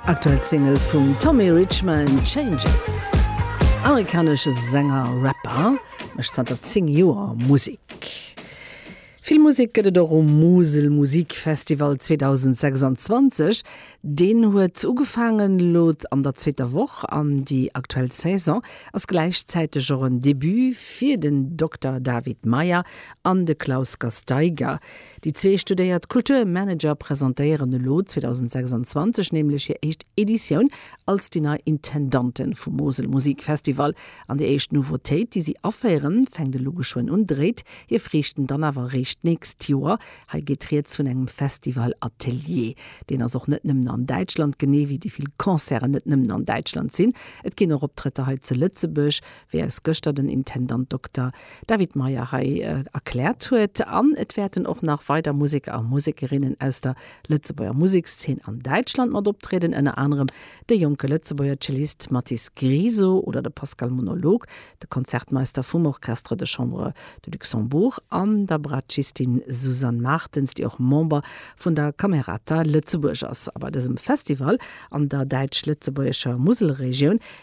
Aktuell Single vum Tommy Richman, Changes. Amerikanesche Sänger, Rapper, mécht zanter 10 Joer Musek. Vill Musek gëtt et och um Musel Musik Festival 2026. Deen huet ugefaangen elo an der zweeter Woch an déi aktuell Saison ass gläichzäiteg och en Debut fir den Dokter David Meyer an de Klaus Gasteiger. Déi zwee studéiert Kulturmanager presentéieren elo 2026 nämlech hir éischt Editioun als déi nei Intendanten vum Mosel Musik Festival. An déi éischt Nouveautéit, déi si aféieren, fänkt elo geschwënn un, dréit hir Friichten dann awer eréischt d'nächst Joer. Hei geet rieds vun engem Festival Atelier. Deen ass och net nëmmen an Däitschland, genee wéi déi vill Concerten net nëmmen an Däitschland sinn. Et ginn och Optrëtter hei zu Lëtzebuerg. wéi eis gëschter den Intendant Dokter David Meyer hei erkläert huet, an et wäerten och nach weider Museker a Musekerinnen aus der Lëtzebuerger Musekszeen an Däitschland mat optrieden, ënner anerem de jonke Lëtzebuerger Cellist Mathis Griso oder de Pascal Monolog, de Konzertmeister vum Orchestre de Chambre de Luxembourg an der Bratschiistin Susanne Martens, déi och Member vun der Camerata Lëtzebuerg ass. A bei dësem Festival an der däitsch-lëtzebuergescher Muselregioun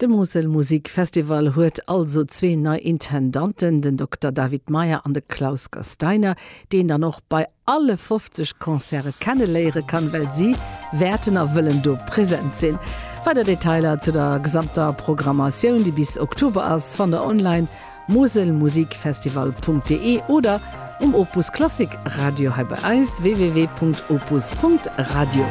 De Mosel Musik Festival huet also zwee nei Intendanten, den Dokter David Meyer an de Klaus Gasteiner, déi een dann och bei alle 50 Concerte kenneléiere kann, well si wäerten a wëllen do present sinn. Weider Detailer zu der gesamter Programmatioun, déi bis Oktober ass, fannt der online, moselmusikfestival.de oder um Opus Klassik Radio hei bei eis, www.opus.radio.